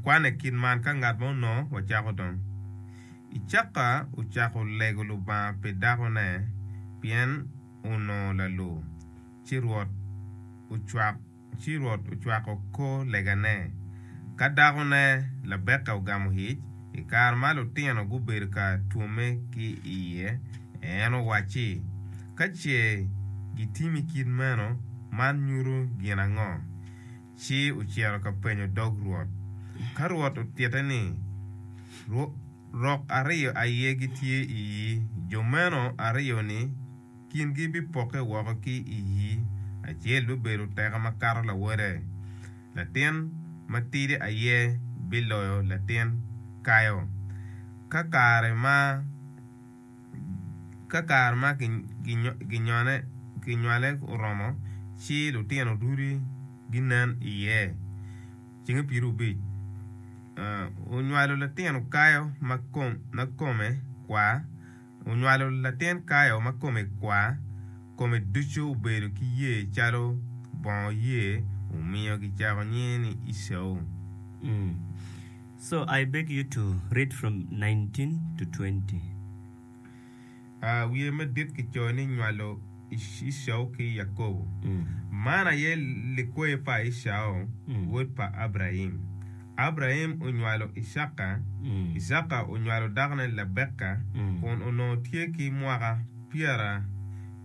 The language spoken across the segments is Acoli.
Kwane kit man ka ngat ma onongo wacako dong. Icaka ocako lego Lubanga pi dakone pien onongo lalu. Ci Rwot ocwako kor legane. Ka dakone, Labeka ogamo ic, i kare ma lutino gubedo ka twomme ki iye, en owacci, Ka ce gitimi kit meno, man nyuto gin ango? ci ocito ka penyo dog Rwot. Ka Rwot otitte ni, Rok aryo aye gitye i yi, jo meno aryo-ni kingi bipokke woko ki i yi, acel bibedo teka makato lawode, latin matidi aye biloyo latin kayo. Ka kare ma. Ka kare ma kinywale oromo, ci lutino duti ginen iye. Cinge piriobic, onywalo latin kayo ma kome kwar, onywalo latin kayo ma kome kwar, kome ducu obedo ki yer calo bongo yer, omiyo kicako nyinge ni Ecau. So I beg you to read from nineteen to twenty. A Wiye madit kicoyo ni Nywalo Ecau ki Yakobo. Man aye likwer pa Ecau, wod pa Abraim. Abraim onywalo Icaka, Icaka onywalo dakone Lebeka, kun onongo tye ki mwaka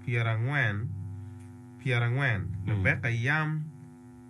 pyerangwen, Lebeka yam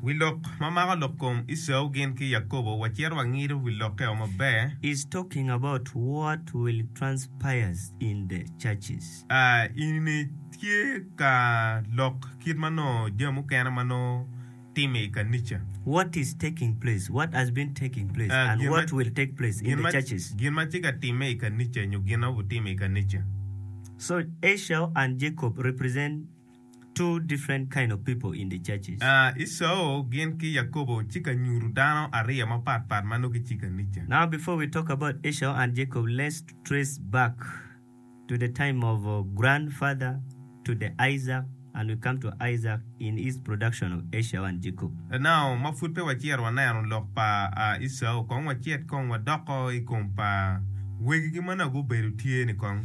Wi lok ma mako lok kom Ecau gin ki Yakobo, wacito wangido wi lokke o maber. Is talking about what will transpires in the churches. A. Enini tye ka lok kit ma nongo jami mukene ma nongo time i kanica. What is taking place, what has been taking place A. and Gin ma, what will take place in gin the ma, churches. gin ma tye ka time i kanica nyo gin ma obitime i kanica. So Ecau and Jacob represent. two different kind of people in the churches. Esau gin ki Yakobo ci ka nyutu dano ariyo ma pat pat ma nongo ki ci ka nica. Now before we talk about Esau and Jacob let's trace back to the time of grand father to the Isaac and we come to Isaac in his production of Esau and Jacob. Now ma pud pe wacito wa neno lok pa Esau kong wacit kong wa doko i kom pa wegi gi ma nongo gubedo tye ni kong.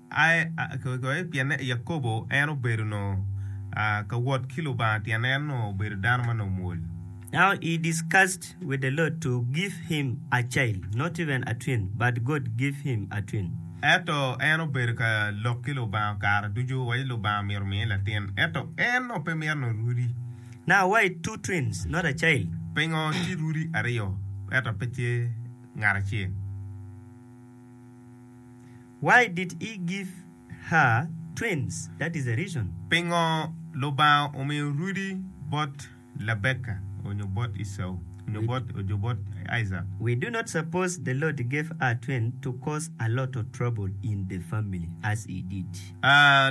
aye pien Yakobo en obedo onongo ka wot ki Lubanga tyen en onongo obedo dano ma onongo mwol. Now he discussed with the Lord to give him a child, not even a twin, but God gave him a twin. Ento en obedo ka lok ki Lubanga kare ducu waci Lubanga myero omiye latin, ento en onongo pe mito nongo rudi. Now why two twins, not a child? Pingo tye rudi aryo ento pe tye ngat acel? Why did he give her twins, that is a reason. Pingo Lubanga omiyo rudi bot Labeka onyo bot Ecau onyo bot onyo bot Isaac? We do not suppose the Lord gave her twin to cause a lot of trouble in the family as he did.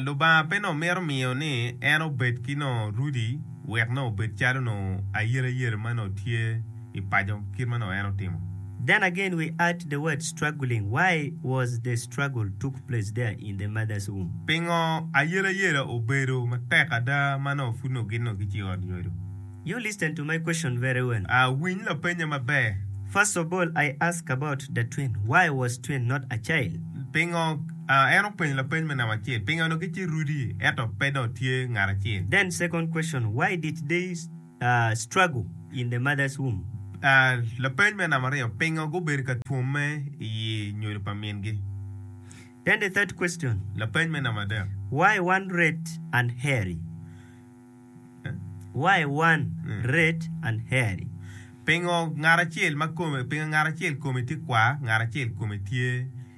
Lubanga pe nongo mito miyo ni en obed ki nongo rudi wek nongo obed calo nongo ayelayela ma nongo tye. i paco kit ma nongo en otimo. Then again we add the word struggling, why was the struggle took place there in the mother's womb? Pingo ayelayela obedo matek ada ma nongo pud nongo gin nongo gice i ot nyodo? You listen to my question very well. A Winy lapennya maber. First of all I ask about the twin, why was twin not a child? Pingo a en openyo lapeny me namba acel, pingo nongo gice rudi ento pe dong tye ngat acel? Then second question, why did they. Struggle in the Mother's Womb. Lapeny me nambariyo, Pingo gubedo ka twomme i yi nyodo pa mingi? Then the third question. Lapeny me nambadek. Why one red and hairy? Why one red and hairy? Pingo ngat acel kome tye kwar ngat acel kome tye.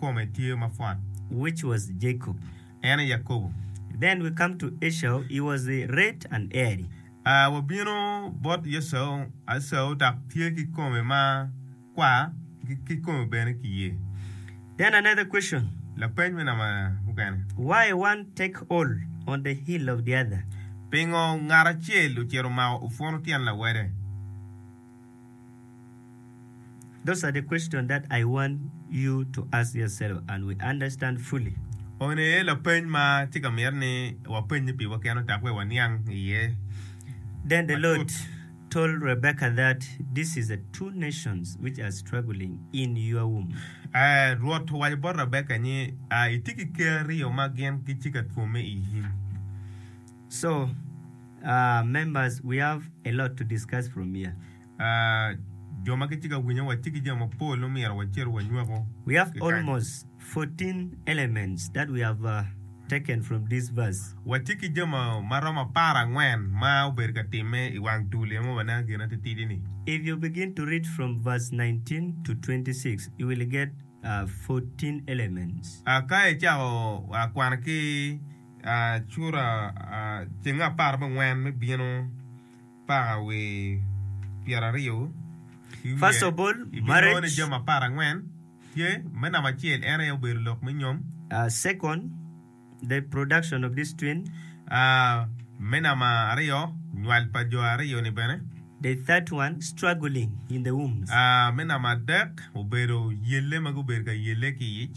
kome tye mapwot. Which was Jacob. En aye Yakobo. Then we come to Esau, he was the red and hairy. Wabino bot Esau, Esau dok tye ki kome ma kwar ki kome bene ki yer. Then another question. Lapeny me namba mukene. Why one take hold on the heel of the other. Pingo ngat acel ocito omako opwono tyen lawede? Those are the questions that I want you to ask yourself and we understand fully. One aye lapeny ma tye ka myero ni wapenye piwa keno dok wek waniang iye matut. Then the Lord told Rebekah that this is the two nations which are struggling in your womb. Rwot owaco bot Rebekah ni, Itye ki ker aryo ma gin gitye ka twomme i yimi. So, uh, members, we have a lot to discuss from here. Uh, jo ma gitye ka winyo watye ki jami mapol ma myero wacito wanywako. We have kikany. almost 14 elements that we have uh, taken from this verse. Watye ki jami ma romo apar angwen ma obedo ka timme i wang dul emo waneno gin atitidi ni. If you begin to read from verse 19 to 26, you will get uh, 14 elements. Uh, ka icako uh, kwano ki Cura ceng apar mangwen me bino pa wi pyeraryo ki wiye ibinongo ni jami apar angwen tye, me namba acel en aye obedo lok me nyom, me namba aryo nywal pa jo aryo ni bene, me namba adek obedo yelle ma gubedo ka yelle ki iyic.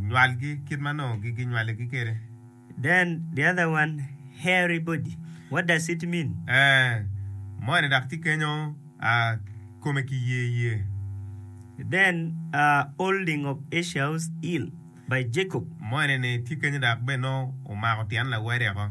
nywalgi kit ma nongo ginywaligi kwede. Then the other one hairy body, what does it mean? Ee, moni dok tye kenyo kome kiyeyee. Then holding of Esau's heel by Jacob. Moni-ni tye kenyo dok bene nongo omako tyen lawadeko.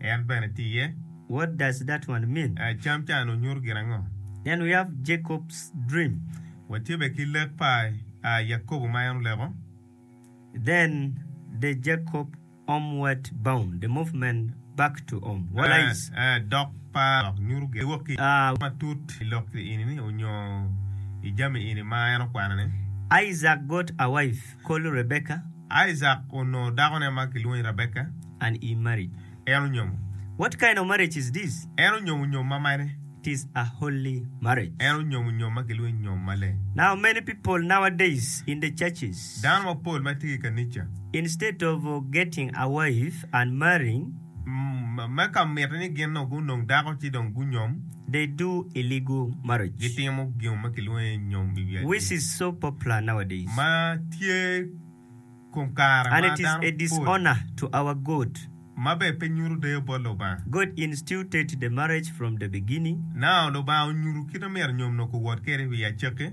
En bene tiye. What does that one mean? Cam can onyuto gin ango? Then we have Jacob's dream. Watye bene ki lek pa Yakobo ma en oleko. Then the Jacob homeward bound, the movement back to home, what lies? Dok pa lok nyuto gin wok ki matut i lok eni-ni onyo i jami eni ma en okwano-ni. Isaac got a wife. Kolu Rebeka. Isaac onongo dakone ma kilwongo ni Rebeka. And he married. En onyomo. What kind of marriage is this? En onyomo nyom ma mene? It is a holy marriage. En onyomo nyom ma kilwongo ni nyom maleng. Now many people nowadays in the churches. Dano mapol ma tye ki i kanica. Instead of getting a wife and marrying. Me ka mitte ni gin dong gunong dako ci dong gunyom. They do illegal marriage. Gitimo gin ma kilwongo ni nyom i wi atir. Which is so popular nowadays. Ma tye kom kare ma dano pol. And it is a dishonor to our God. Ma bene pe nyuto deyo bot Lubanga. God instituted the marriage from the beginning. Nao Lubanga onyuto kit ma myero nyom nongo kuwot kwede i wi acakki.